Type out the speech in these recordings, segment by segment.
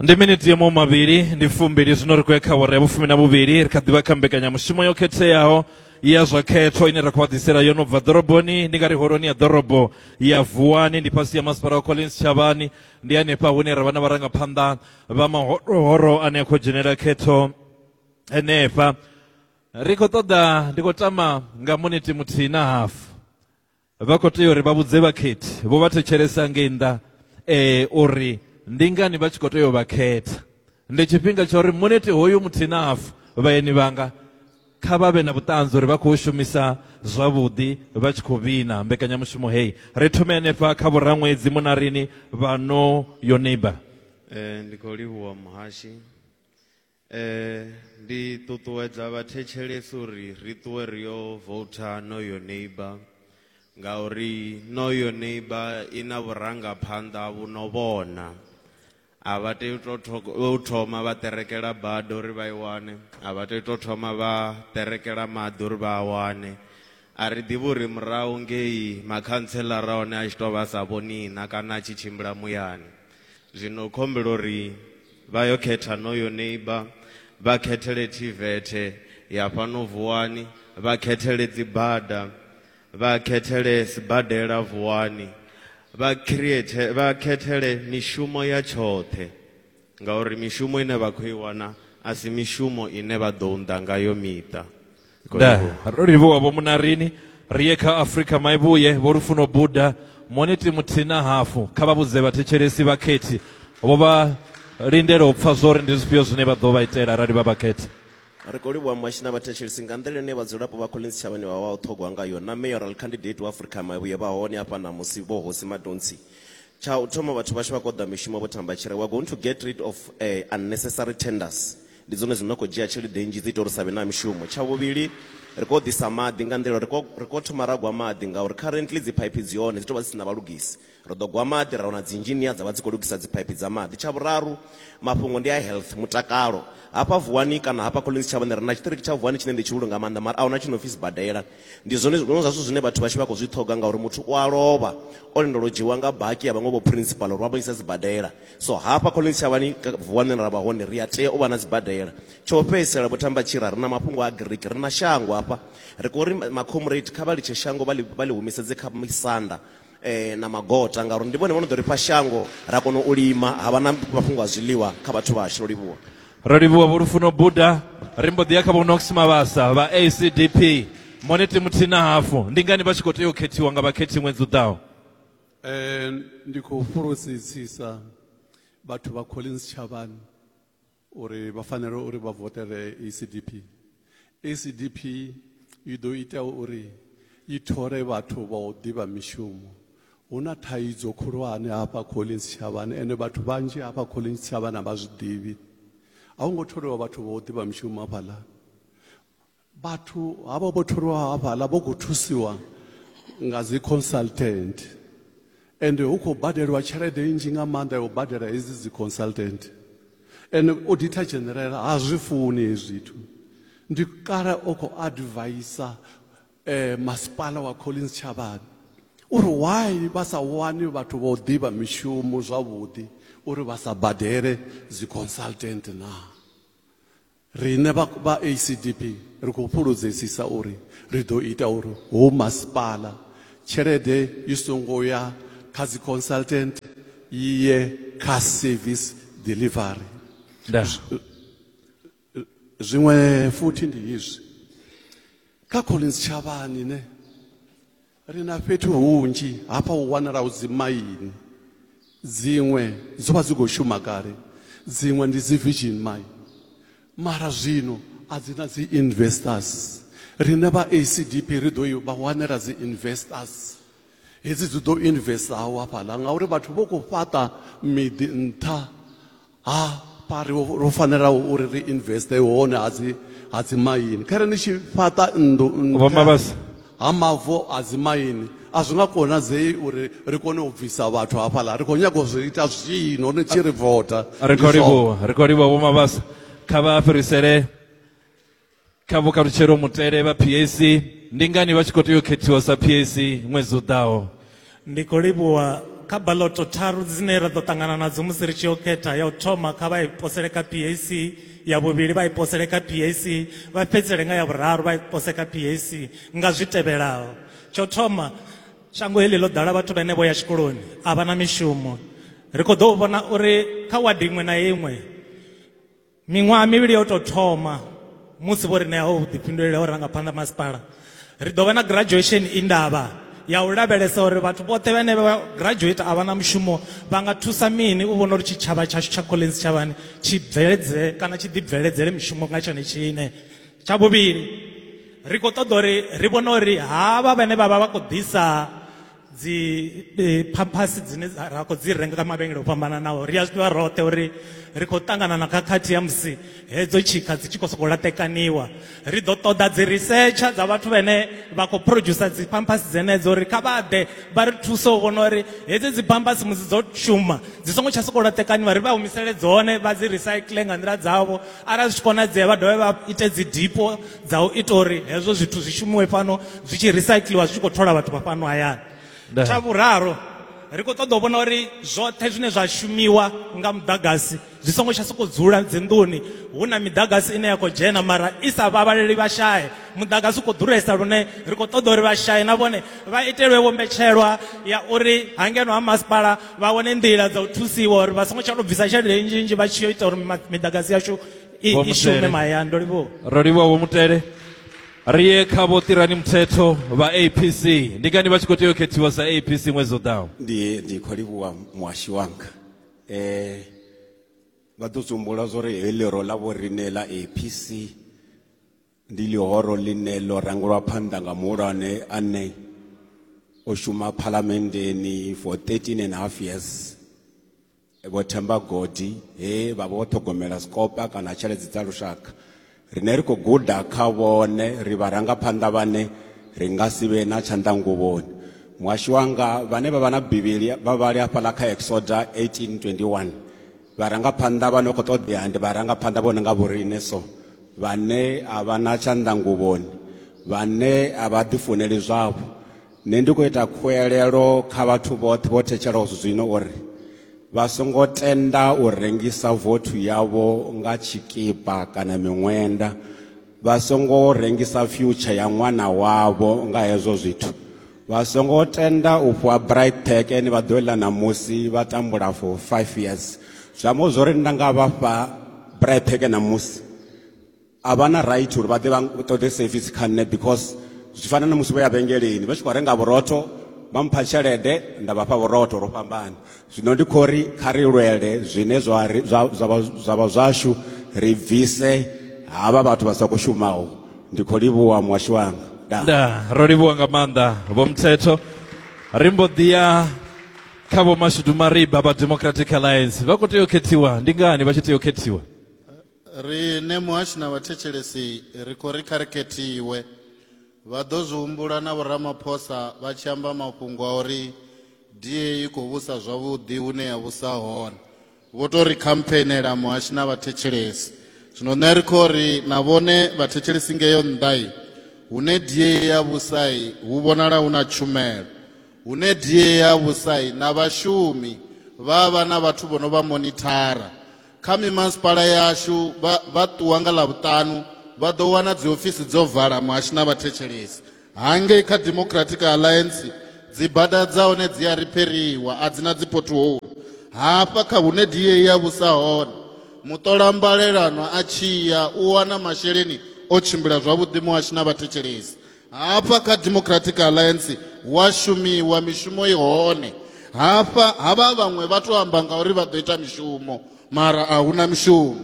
ndi miniti ya mavhili ndi fumbili zwino ri khou ya kha awara ya vhufumi na vhuvhili ri kha ḓivha kha mbekanyamushumo yo khetheaho ya zwa khetho ine ra khou vha ḓisela yo no bva ḓoroboni ndi nga ri holoni ya ḓorobo ya vuwani ndi fhasi ya masipala wa collins tshavhani ndi hanefha hune ra vha na vharangaphanḓa vha mahorohoro ane a khou dzhenela khetho henefha ri khou ṱoḓa ndi khou tama nga muniti muthihi na hafu Vha khou tea uri vha vhudze vhakhethi vho vha thetshelesa ngei nnḓa eh, uri ndi ngani vha tshi khou tea u vha khetha. Ndi tshifhinga tsha uri muneti hoyu muthihi na hafu vhaeni vhanga kha vha vhe na vhuṱanzi uri vha khou shumisa zwavhuḓi vha tshi khou vhina mbekanyamushumo heyi. Ri thome hanefha kha vhuraṅwedzi munarini vha no yo neighbor. Eh, ndi khou livhuwa muhashi Eh, ndi ṱuṱuwedza vhathetshelesi uri ri ṱuwe ri yo vouta Know Your Neighbour ngauri Know Your Neighbour i na vhurangaphanḓa vhu no vhona a vha tei u tou tho- u thoma vha ṱerekela bada uri vha i wane a vha tei u tou thoma vha ṱerekela maḓi uri vha a wane a ri ḓivhi uri murahu ngei makhantsela ra hone a tshi tou vha a sa vhoni na kana a tshi tshimbila muyani zwino u khombela uri vha yo khetha noyo neiba vha khethele thivethe ya fhano vuwani vha khethele dzibada vha khethele sibadela vuwani vha create vha khethele mishumo ya tshoṱhe ngauri mishumo ine vha khou i wana a si mishumo ine vha ḓo unḓa ngayo miṱa da ro livhuwa vho munarini ri ye kha afrika maivhuye vho lufuno buda moniti muthihi na hafu kha vha vhudze vhathetshelesi vhakhethi vho vha lindela u pfa zwo ri ndi zwifhio zwine vha ḓo vha itela arali vha vhakhetha ri khou livhuwa muhashi na vhathetshelesi nga nḓila ine vhadzulapo vha collins tshavhani vha vha u ṱhogwa ngayo na mayoral candidate wa afrika maivhuye vha hone hafha ṋamusi vho hosi madontsi tsha u thoma vhathu vhashu vha koḓa mishumo vho thamba tshire we're going to get rid of uh, unnecessary tenders Ndi dzone dzine dza khou dzhia tshelede nnzhi dzi ita uri hu sa vhe na mishumo. Tsha vhuvhili, ri khou ḓisa maḓi nga nḓila uri ri khou thoma ra gwa maḓi ngauri currently dziphaiphi dzi hone dzi tou vha dzi si na vhalugisi. Ri ḓo gwa maḓi ra wana dzi engineer dza vha dzi khou lugisa dziphaiphi dza maḓi. Tsha vhuraru, mafhungo ndi a health, mutakalo. Hafha Vuwani kana hafha Collins Tshavhani ri na tshiṱiriki tsha Vuwani tshine ndi tshi hulu nga maanḓa mara a hu na tshi no pfi sibadela. Ndi zwone zwiṅwe zwa zwithu zwine vhathu vhashu vha khou zwi ṱhoga ngauri muthu u a lovha o lindela u dzhiiwa nga baki ya vhaṅwe vho principal uri vha mu ise sibadela. So hafha Collins Shavhani vuwani ra vha hone, ri a tea u vha na sibadela. Tsha u fhedzisela, Vho Thamba Tshira, ri na mafhungo a Greek, ri na shango hafha. Ri khou ri makhomuredi kha vha litshe shango vha ḽi vha ḽi humisedze kha misanda na magota ngauri ndi vhone vho no ḓo ri fha shango ra kona u lima ha vha na mafhungo a zwiḽiwa kha vhathu vhashu. Ro livhuwa. Ro livhuwa Vho Lufuno Buda. Ri mbo ḓi ya kha Vho Nox Mabasa vha ACDP. Moniti muthihi na hafu, Ndi ngani vha tshi khou tea u khethiwa nga vhakhethi ṅwedzi u ḓaho? Eh, ndi khou fhulufhedzisisa vhathu vha collins tshavhani uri vha fanela uri vha votele acdp acdp i ḓo ita uri i thole vhathu vha u ḓivha mishumo hu na thaidzo khulwane hafha collins tshavhani ende vhathu vhanzhi hafha collins tshavhani a vha zwi ḓivhi a hu ngo tholiwa vhathu vha u ḓivha mishumo hafhaḽa vhathu havho vho tholiwa hafhaḽa vho khou thusiwa nga dzi consultant ende hu khou badeliwa tshelede nnzhi nga maanḓa ya u badela hedzi dzi consultant ende oditha generela ha zwi funi hezwi zwithu ndi kale o khou advaisa eh, masipala wa collins tshavhani uri why vha sa wani vhathu vho ḓivha mishumo zwavhuḓi uri vha sa badele dzi consultant naa Riṋe vha vha ACDP ri khou fhuludzesisa uri ri ḓo ita uri howu masipala tshelede i songo ya kha dzi consultant i ye kha service delivery. Ndaa. Zwiṅwe futhi ndi izwi, kha Collins Tshavhani ne ri na fhethu hunzhi hafha hu wanalaho dzimaini dziṅwe dzo vha dzi khou shuma kale dziṅwe ndi dzi virgin mine mara zwino a dzi na dzi investors rine vha acdp ri ḓo vha wanela dzi investors hedzi dzi ḓo investaho hafhaḽa ngauri vhathu vho khou fhaṱa miḓi nṱha ha pari ro fanela uri ri investe hone ha dzi ha dzi maini kha re ni tshi fhaṱa nnḓu vhomabasa ha mavu a dzi maini a zwi nga konadzei uri ri kone u bvisa vhathu hafhaḽa ri khou nyaga u zwi ita zwino ni tshi ri vota ri khou livhuwa ri khou livhuwa vhomabasa kha vha fhirisele kha vhukalutshelo mutele vha pac ndi ngani vha tshi khou tea u khethiwa sa pac ṅwedzi u ḓaho ndi khou livhuwa kha baloto tharu dzine ra ḓo ṱangana nadzo musi ri tshi yo khetha ya u thoma kha vha i posele kha pac ya vhuvhili vha i posele kha pac vha fhedzisele nga ya vhuraru vha i pose kha pac nga zwi tevhelaho tsho thoma shango heḽi ḽo ḓala vhathu vhane vho ya tshikoloni a vha na mishumo ri khou ḓo vhona uri kha wadi iṅwe na iṅwe Miṅwaha mivhili yo tou thoma musi vho ri ṋea ho vhuḓifhinduleli ha vhurangaphanḓa masipala ri ḓo vha na graduation i ndavha ya u lavhelesa uri vhathu vhoṱhe vhane vha graduate a vha na mushumo vha nga thusa mini u vhona uri tshitshavha tshashu tsha collins tshavhani tshi bveledze kana tshi ḓibveledzele mishumo nga tshone tshine tsha vhuvhili ri khou ṱoḓa uri ri vhone uri havha vhane vha vha vha khou ḓisa dzi e, phaphasi dzine ra khou dzi renga kha mavhengele o fhambananaho ri a zwi ḓivha roṱhe uri ri khou ṱangana na khakhathi ya musi hedzo tshikha dzi tshi khou sokou laṱekaniwa ri ḓo ṱoḓa dzi risetsha dza vhathu vhene vha khou producer dzi phaphasi dzenedzo uri kha vha ḓe vha ri thuse u vhona uri hedzi dzi phaphasi musi dzo shuma dzi songo tsha sokou laṱekaniwa ri vha humisele dzone vha dzi recycle nga nḓila dzavho arali zwi tshi konadzea vha dovhe vha ite dzi dipo dza u ita uri hezwo zwithu zwi shumiwe fhano zwi tshi recycliwa zwi tshi khou thola vhathu vha fhano hayani Nda. tsha vhuraru ri khou ṱoḓa u vhona uri zwoṱhe zwine zwa shumiwa nga muḓagasi zwi songo tsha sokou dzula dzinḓuni hu na miḓagasi ine ya khou dzhena mara i sa vhavhaleli vhashaye muḓagasi u khou ḓuresa lune ri khou ṱoḓa uri vhashaye na vhone vha itelwe vhombetshelwa ya uri hangeno ha masipala vha wane nḓila dza u thusiwa uri vha songo tsha tou bvisa tshelede nnzhi nnzhi vha tshi yo ita uri ma- miḓagasi yashu i Vho i shume Mutele. mahayani ndo livhuwa ro livhuwa vho mutele ri ye kha vho ṱirani muthetho vha apc ndi ngani vha tshi khou tea u khethiwa sa apc ṅwedzi u ḓaho ndi ndi khou livhuwa muhashi wanga eh vha ḓo dzumbula zwo ri heyi ḽero ḽa vho riṋe ḽa apc Ndi ḽihoro ḽine ḽo rangulwa phanḓa nga muhulwane ane o shuma phalamenndeni for 13 and half years vho themba godi he vha vho ṱhogomela sikopa kana tsheledzi dza lushaka rine ri khou guda kha vhone ri vharangaphanḓa vhane ri nga si vhe na tshanḓanguvhoni muhasho wanga vhane vha vha na bivhili vha vhali hafhaḽa kha exoda 1821 Vharangaphanḓa vha no khou ṱoḓea ndi vharangaphanḓa vho no nga vhoriṋe so vhane a vha na tshanḓanguvhoni vhane a vha ḓifuneli zwavho nṋe ndi khou ita khuelelo kha vhathu vhoṱhe vho thetshelaho zwino uri vha songo tenda u rengisa vothu yavho nga tshikipa kana miṅwenda vha songo rengisa future ya ṅwana wavho nga hezwo zwithu vha songo tenda u fhiwa bright pack ene vha ḓo ḽa ṋamusi vha tambula for five years zwi amba zwo ri nda nga vha fha bright pack ṋamusi a vha na right uri vha ḓe vha ṱoḓe service kha nṋe because zwi fana na musi vho ya vhengeleni vha tshi khou renga vhurotho vha mpha tshelede nda vha fha vhurotho ro fhambana Zwino ndi khou ri kha ri lwele zwine zwa ri- zwa- zwa vha- zwa vha zwashu ri bvise havha vhathu vha sa khou shumaho ndi khou livhuwa muhasho wanga Ndaa. nda ro livhuwa nga maanḓa vho mthetho ri mbo ḓi ya kha vho mashudu mariba vha democratic alliance vha khou tea u khethiwa ndi ngani vha tshi tea u khethiwa riṋe muhashi na vhathetshelesi ri khou ri kha ri khethiwe Vha ḓo zwi humbula na Vho Ramaphosa vha tshi amba mafhungo a uri DA i khou vhusa zwavhuḓi hune ya vhusa hone. Vho tou ri khampheeinela muhashi na vhathetshelesi. Zwino nṋe ri khou ri na vhone vhathetshelesi ngeyo nnḓa-i, hune DA ya vhusa-i hu vhonala hu na tshumelo. Hune DA ya vhusa-i na vhashumi vha vha na vhathu vho no vha monithara, Kha mimasipala yashu vha vha ṱuwa nga ḽavhuṱanu vha ḓo wana dziofisi dzo vala muhashi na vhathetshelesi. Hangei kha Democratic Alliance dzibada dza hone dzi a ripheriwa a dzi na dzipothoulu. Hafha kha hune DA ya vhusa hone muṱola mbalelano a tshi ya u wana masheleni o tshimbila zwavhuḓi muhashi na vhathetshelesi hafha kha democratic alliance hu a shumiwa mishumo i hone hafha havha vhaṅwe vha tou amba nga uri vha ḓo ita mishumo mara a huna mishumo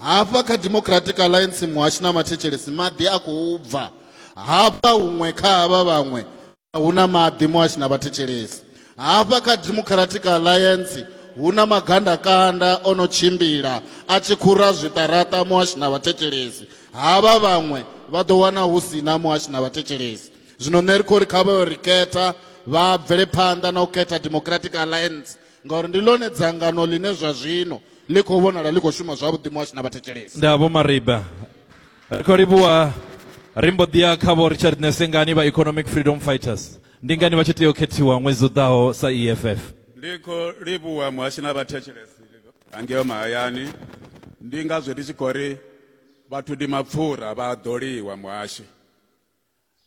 hafha kha democratic alliance muhashi na mathetshelesi maḓi a khou bva hafha huṅwe kha havha vhaṅwe a huna maḓi muhashi na vhathetshelesi Hafha kha Democratic Alliance hu na magandakanda o no tshimbila a tshi khura zwiṱaraṱa muhashi na vhathetshelesi. Havha vhaṅwe vha ḓo wana hu si na muhashi na vhathetshelesi. Zwino nṋe ri khou ri kha vha yo ri khetha vha bvele phanḓa na u khetha Democratic Alliance ngauri ndi ḽone dzangano ḽine zwa zwino ḽi khou vhonala ḽi khou shuma zwavhuḓi muhashi na vhathetshelesi. Ndaa Vho Mariba. Ri khou livhuwa ri mbo ḓi ya kha Vho Richard Nesengani vha Economic Freedom Fighters. ndi ngani vha tshi tea u khethiwa ṅwedzi u ḓaho sa eff ndi khou livhuwa muhashi na vhathetshelesi angeo mahayani ndi ngazwo ndi tshi khou ri vhathu ndi mapfura vha ḓoliwa muhashi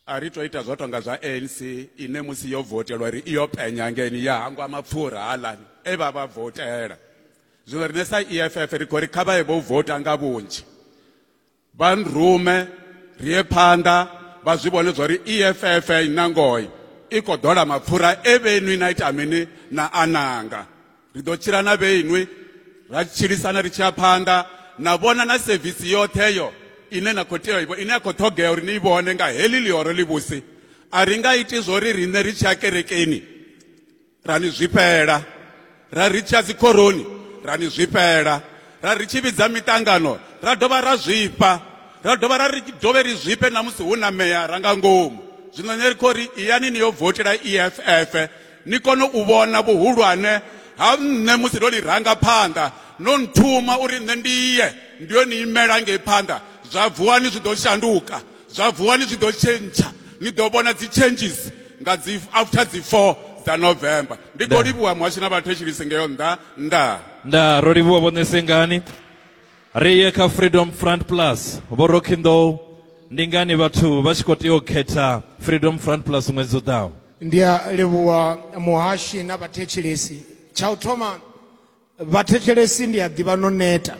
a ri tou ita zwo tonga zwa anc ine musi yo votelwa ri iyo penya ngeni ya hangwa mapfura halani e vha vha votela zwino riṋe sa eff ri khou ri kha vha ye vho vota nga vhunzhi vha nrume ri ye phanḓa vha zwi vhone zwa uri eff i na ngoi i khou ḓola mapfura e vhenwi na ita mini na ananga ri ḓo tshila na vheinwi ra tshilisana ri tshi ya phanḓa na vhona na sevisi yoṱheyo ine na khou tea ine ya khou ṱhogea uri ni i vhone nga heḽi ḽihoro ḽivhusi a ri nga iti zwo ri riṋe ri tshi ya kerekeni ra ni zwifhela ra ri tsha dzikhoroni ra ni zwifhela ra ri tshi vhidza miṱangano ra dovha ra zwifha ra dovha ra ri dovhe ri zwifhe na musi hu na meya ra nga ngomu zwino ne ri khou ri iyani ni yo votela eff ni kone u vhona vhuhulwane ha nṋe musi ndo ḽi ranga phanḓa no nthuma uri nṋe ndi ye ndi yo ni imela ngei phanḓa zwa vuwani zwi ḓo shanduka zwa vuwa ni zwi ḓo tshentsha ni ḓo vhona dzi changes nga dzi after dzi 4 dza november ndi khou livhuwa muhashi na vhathetshelisi ngeyo nnḓa nnḓa nda ro livhuwa vhone sengani ri ye kha freedom front plus vho rockindow ndi ngani vhathu vha tshi khou tea u khetha freedom front plus ṅwedzi u ḓaho ndi a livhuwa muhashi na vhathetshelesi tsha u thoma vhathetshelesi ndi a ḓivha no neta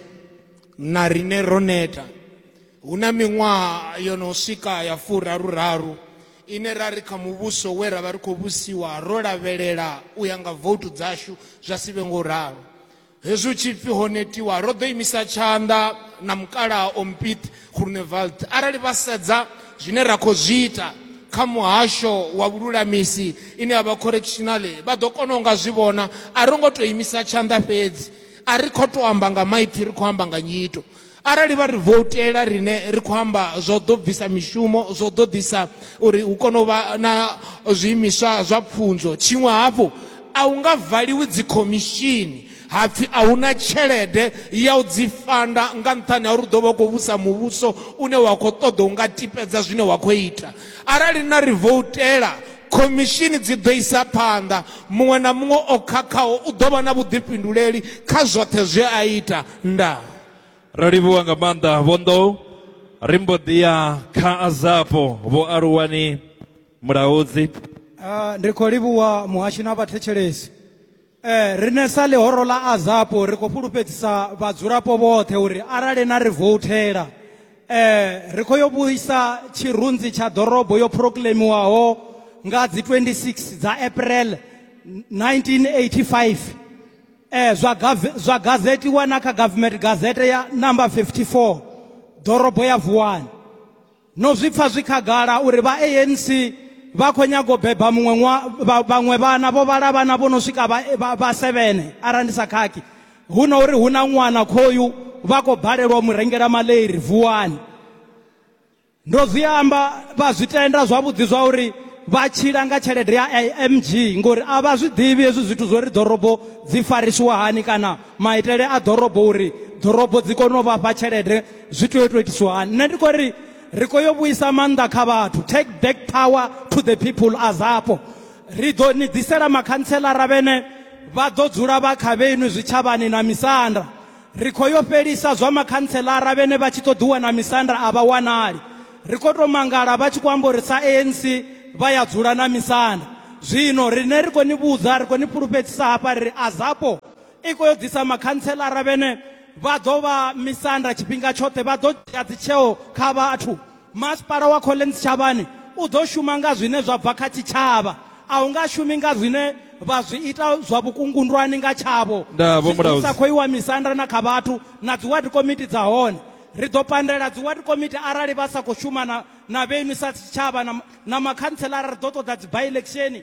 na rine ro neta hu na miṅwaha yo no swika ya furaru raru ine ra ri kha muvhuso we ra vha ri khou vhusiwa ro lavhelela u ya nga voutu dzashu zwa si vhe ngo ralo hezwi hu tshi pfi ho netiwa ro ḓo imisa tshanḓa na mukalaha ompit Groenewald arali vha sedza zwine ra khou zwi ita kha muhasho wa vhululamisi ine ya vha correctional vha ḓo kona u nga zwi vhona a ri ngo tou imisa tshanḓa fhedzi a ri khou tou amba nga maipfhi ri khou amba nga nyito arali vha ri voutela rine ri khou amba zwo ḓo bvisa mishumo zwo ḓo ḓisa uri hu kone u vha na zwiimiswa zwa pfunzo tshiṅwe hafhu a hu nga valiwi dzikhomishini ha pfi a hu na tshelede ya u dzi fanda nga nṱhani ha uri u ḓo vha u khou vhusa muvhuso une wa khou ṱoḓa u nga tipedza zwine wa khou ita arali na ri voutela khomishini dzi ḓo isa phanḓa muṅwe na muṅwe o khakhaho u ḓo vha na vhuḓifhinduleli kha zwoṱhe zwe a ita nda ro livhuwa nga maanḓa vhondo ri mbo ḓi ya kha azapo vho aluwani mulaudzi ah, ndi khou livhuwa muhasho na vhathetshelesi Eh, rine sa ḽihoro ḽa azapo ri khou fhulufhedzisa vhadzulapo vhoṱhe uri arali na ri vouthela eh, ri khou yo vhuisa tshirunzi tsha ḓorobo yo proclaimiwaho nga dzi 26 dza april 1985 eh, zwa, gave- zwa gazetiwa na kha government gazette ya number 54 ḓorobo ya vuwani No zwi pfa zwi khagala uri vha ANC vha khou nyaga u beba muṅwe ṅwa, vha, vhaṅwe vhana vho vhala vhana vho no swika vha, vha, vha sevene arali ndi sa khakhi hu na uri hu na ṅwana khoyu vha khou balelwa u mu rengela maleiri vuwani ndo zwi amba vha zwi tenda zwavhuḓi zwa uri vha tshila nga tshelede ya img ngori a vha zwi ḓivhi hezwi zwithu zwo ri ḓorobo dzi farisiwa hani kana maitele a ḓorobo uri ḓorobo dzi kone u vha fha tshelede zwi tea u tou itiswa hani nṋe ndi khou ri ri khou yo vhuisa maanḓa kha vhathu take back power to the people a zapo ri ḓo ni ḓisela makhantselara vhene vha ḓo dzula vha kha vhenu zwitshavhani na misanda ri khou yo fhelisa zwa makhantselara vhene vha tshi ṱoḓiwa na misanda a vha wanali ri khou tou mangala vha tshi khou amba uri sa anc vha ya dzula na misanda zwino riṋe ri khou ni vhudza ri khou ni fhulufhedzisa hafha ri ri a zapo i khou yo ḓisa makhantselara vhene vha ḓo vha misanda tshifhinga tshoṱhe vha ḓo dzhia dzitsheo kha vhathu masipala wa collins tshavhani u ḓo shuma nga zwine zwa bva kha tshitshavha a hu nga shumi nga zwine vha zwi ita zwa vhukungundwani nga tshavho Ndaa, Vho Mulaudzi. sa khou iwa misanda na kha vhathu na dzi ward committee dza hone ri ḓo pandela dzi ward committee arali vha sa khou shuma na, na vhenu sa tshitshavha na, na makhantselara ri ḓo ṱoḓa dzi by election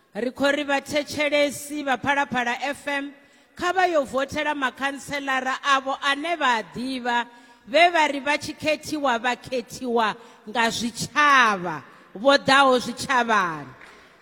Ri khou ri vhathetshelesi vha Phalaphala FM kha vha yo vothela makhantselara avho ane vha a ḓivha vhe vha ri vha tshi khethiwa vha khethiwa nga zwitshavha vho ḓaho zwitshavhani.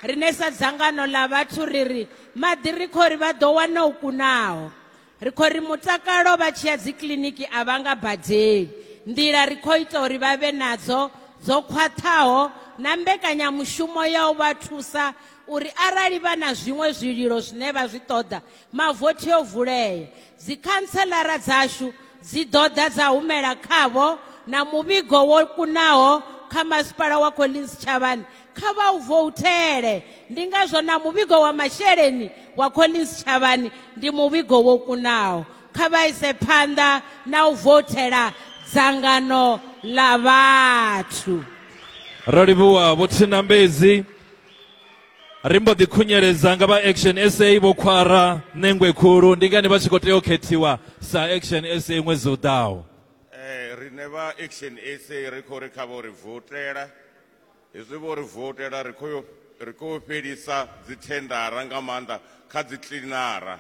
Riṋe sa dzangano ḽa vhathu ri ri maḓi ri khou ri vha ḓo wana o kunaho. Ri khou ri mutakalo vha tshi ya dzikiḽiniki a vha nga badeli. Nḓila ri khou ita uri vha vhe nadzo dzo khwaṱhaho na mbekanyamushumo ya u vha thusa uri arali vha na zwiṅwe zwililo zwine vha zwi ṱoḓa, mavothi o vulea. Dzikhantseḽara dzashu dzi ḓo ḓa dza humela khavho na muvhigo wo kunaho kha Masipala wa Collins Chavani kha vha u vouthele ndi ngazwo na muvhigo wa masheleni wa collins tshavhani ndi muvhigo wo kunaho kha vha ise phanḓa na u vouthela dzangano ḽa vhathu ro livhuwa vho thinambedzi ri mbo ḓi khunyeledza nga vha action sa vho khwara nengwe khulu ndi ngani vha tshi khou tea u khethiwa sa action sa ṅwedzi u ḓaho um eh, rine vha action sa ri khou ri kha vho ri votela Hezwi vho ri voutela ri khou ri khou fhelisa dzithendara nga maanḓa kha dzi kiḽinara.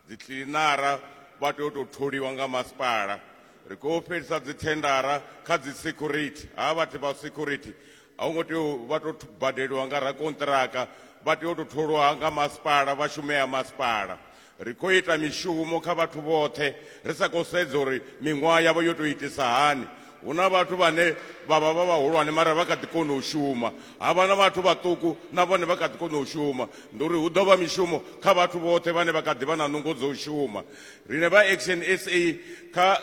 Dzi kiḽinara vha tea u tou tholiwa nga masipala. Ri khou fhelisa dzithendara kha dzi security, ha vhathu vha security a hu ngo tea u vha tou badeliwa nga rakonṱiraka vha tea u tou tholiwa nga masipala vha shumea masipala. Ri khou ita mishumo kha vhathu vhoṱhe ri sa khou sedza uri miṅwaha yavho yo tou itisa hani. Hu na vhathu vhane vha vha vha vhahulwane mara vha kha ḓi kona u shuma, ha vha na vhathu vhaṱuku na vhone vha kha ḓi kona u shuma. Ndi uri hu ḓo vha mishumo kha vhathu vhoṱhe vhane vha kha ḓi vha na nungo dza u shuma. Riṋe vha Action sa kha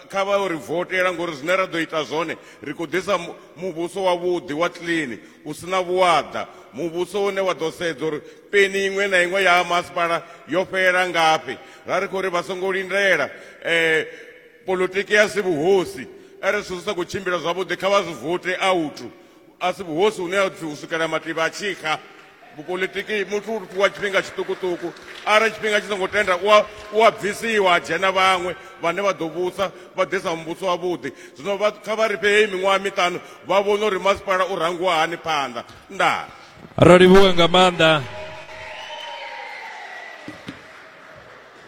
kha vha ri votela ngori zwine ra ḓo ita zwone ri khou ḓisa muvhuso wavhuḓi wa clean u si na vhuaḓa, muvhuso une wa ḓo sedza uri peni iṅwe na iṅwe ya masipala yo fhela ngafhi ra ri khou ri vha songo lindela um politiki ya si vhuhosi are zwithu zwi sa khou tshimbila zwavhuḓi kha vha zwi vote authu a si vhuhosi hune a pfhi u swikela mativha a tshi xa vhupolitiki muthu u fhiwa tshifhinga tshiṱukuṱuku arali tshifhinga tshi songo tenda u a bvisiwa a dzhena vhaṅwe vhane vha ḓo vhusa vha ḓisa muvhuso wavhuḓi zwino kha vha ri fhe heyi miṅwaha miṱanu vha vhone uri masipala u rangiwa hani phanḓa ndaa ro livhuwa nga maanḓa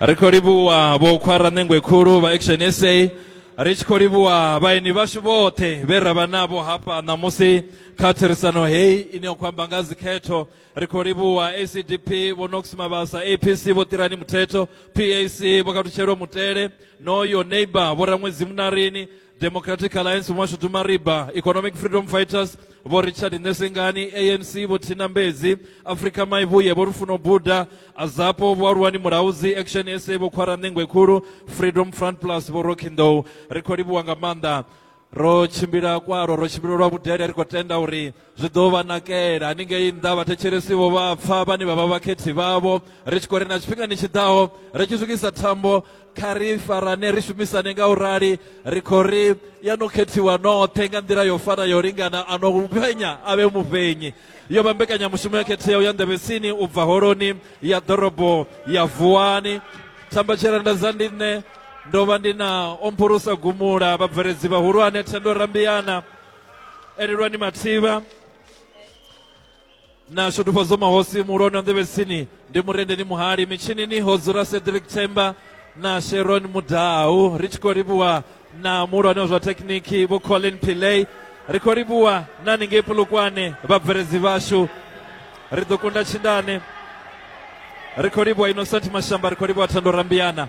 ri khou livhuwa vho khwara ṋengwe khulu vha action sa ri tshi khou livhuwa vhaeni vhashu vhoṱhe vhe ra vha navho hafha ṋamusi kha therisano heyi ine ya khou amba nga dzikhetho ri khou livhuwa acdp vho nox mavhasa apc vho ṱirani muthetho pac vho katutshelo mutele no yo neighbor vho raṅwedzi munarini democratic alliance vho mashudu mariba economic freedom fighters vho richard ṋesengani anc vho thina mbedzi afrika maivhuye vho lufuno buda azapo vho aluwani mulauzi action sa vho khwara ṋengwe khulu freedom front plus vho rokindow ri khou livhuwa nga maanḓa ro tshimbila kwaro ro tshimbila lwa vhudele ri khou tenda uri zwi ḓo vha nakela haningei nnḓa vhathetshelesivo vha pfa vhane vha vha vhakhethi vhavho ri tshi khou ri na tshifhingani tshi ḓaho ri tshi swikisa thambo kha ri farane ri shumisane nga u rali ri khou ri ya no khethiwa noṱhe nga nḓila yo fana yo lingana a no vhenya a vhe mufhenyi yo vha mbekanyamushumo ya khetheaho ya nḓevhesini u bva holoni ya ḓorobo ya vuwani thambatshela nda za ndi nṋe ndo vha ndi na omphurusa gumula vhabveledzi vhahulwane thendo rambiana elelwani mathivha na shudufhadzo mahosi muhulwane wa nḓevhesini ndi murendeni muhali mitshinini ho dzula cedric themba na sharon mudau ri tshi khou livhuwa na muhulwane wa zwa thekhiniki vho colin pillay ri khou livhuwa na ningei pulukwane vhabveledzi vhashu ri ḓo kunda tshindane ri khou livhuwa innocent mashamba ri khou livhuwa thando rambiana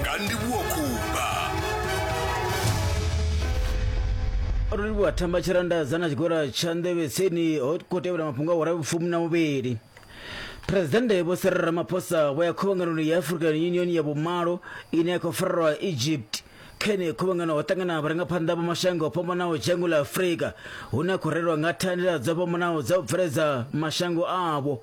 nga ndivhuwo kumba ro livhuwa thamba tshiranda dza na tshigora tsha nḓevhetseni ho khou tevhela mafhungo a huraru fumi na muvhili presidennde vho sere ramaphosa vho ya khuvhanganoni ya african union ya vhumalo ine ya khou farelwa egypt kha ine khuvhangano ho ṱangana vharangaphanḓa vha mashango o fhambanaho dzhango ḽa afurika hune a khou rerwa nga thandela dzo fhambanaho dza u bveledza mashango avho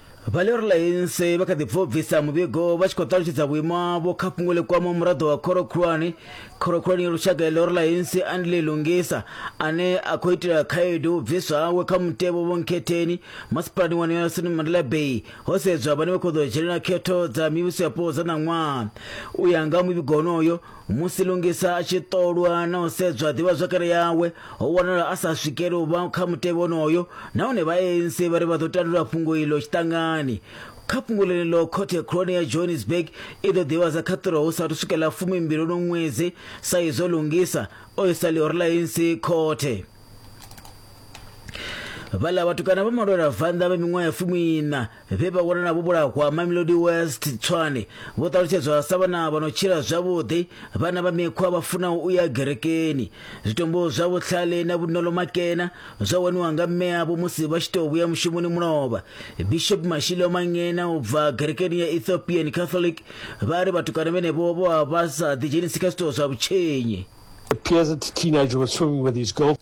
Valerio Lainse vha kha ḓi bva u bvisa muvhigo vha tshi khou ṱalutshedza vhuimo havho kha fhungo ḽi kwamaho muraḓo wa khoro khulwane khoro khulwane ya lushaka ya Lerio Lainse Andile Lungisa ane a khou itela khaedu u bviswa hawe kha mutevho vhonkhetheni masipalani wa Nelson Mandela Bay ho sedzwa vhane vha khou ḓo dzhenela khetho dza mivhuso yapo dza ṋaṅwaha u ya nga muvhigo honoyo Musi Lungisa a tshi ṱolwa na u sedzwa ḓivhazwakale yawe, ho wanala a sa swikeli u vha kha mutevhe wonoyo nahone vha ANC vha ri vha ḓo tandulula fhungo iḽo tshiṱangani. Kha fhungo ḽeneḽo, khothe khulwane ya Johannesburg i ḓo ḓivhadza khaṱhulo hu saathu swika ḽa fumimbili uno ṅwedzi sa izwo Lungisa o isa ḽihoro ḽa ANC khothe. Vhaḽa vhatukana vha malwela vanḓa vha miṅwaha ya fumiiṋa vhe vha wanala vho vhulahwa mamelodi west tswane vho ṱalutshedzwa sa vhana vha no tshila zwavhuḓi vhana vha mikhwa vha funaho u ya gerekeni zwitombo zwa vhutlhale na vhuṋolo makena zwa waniwa nga mmeavho musi vha tshi tou vhuya mushumoni mulovha bishop mashilo mangena u bva gerekeni ya ethiopian catholic vha ri vhatukana vhenevho vho vha vha sa ḓidzhenisi kha zwitoo zwa vhutshenyi appears at the teenage was swimming with his girl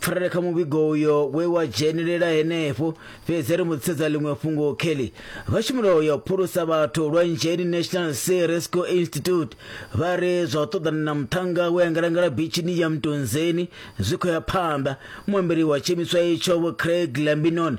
pfarele kha muvhigo uyo we wa dzhenelela henefho fhedzi ri mu ḓisedza ḽiṅwe fhungo kelly vhashumelo ya u phulusa vhathu lwa nzheni national sea rescue institute vha ri zwa u ṱoḓana na muṱhannga we angalangala bitshini ya mtunzeni zwi khou ya phanḓa muambeli wa tshiimiswa itsho vho craig lambinon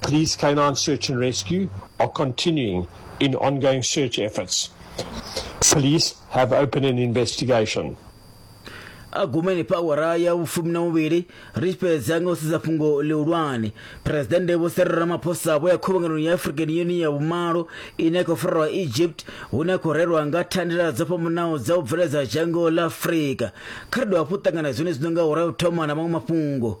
Police canine search and rescue are continuing in ongoing search efforts. Police have opened an investigation. agumeni pa awara ya vhufumi na muvhili ri tshi fhedza nga u sedza fhungo ḽihulwane phuresidennde vho Cyril Ramaphosa vho ya khuvhanganoni ya African Union ya vhumalo ine ya khou farelwa Egypt hune a khou rerwa nga thandela dzo fhambanaho dza u bveledza dzhango ḽa Afrika kha ri dovha hafhu u ṱangana zwenezwi no nga awara ya u thoma na maṅwe mafhungo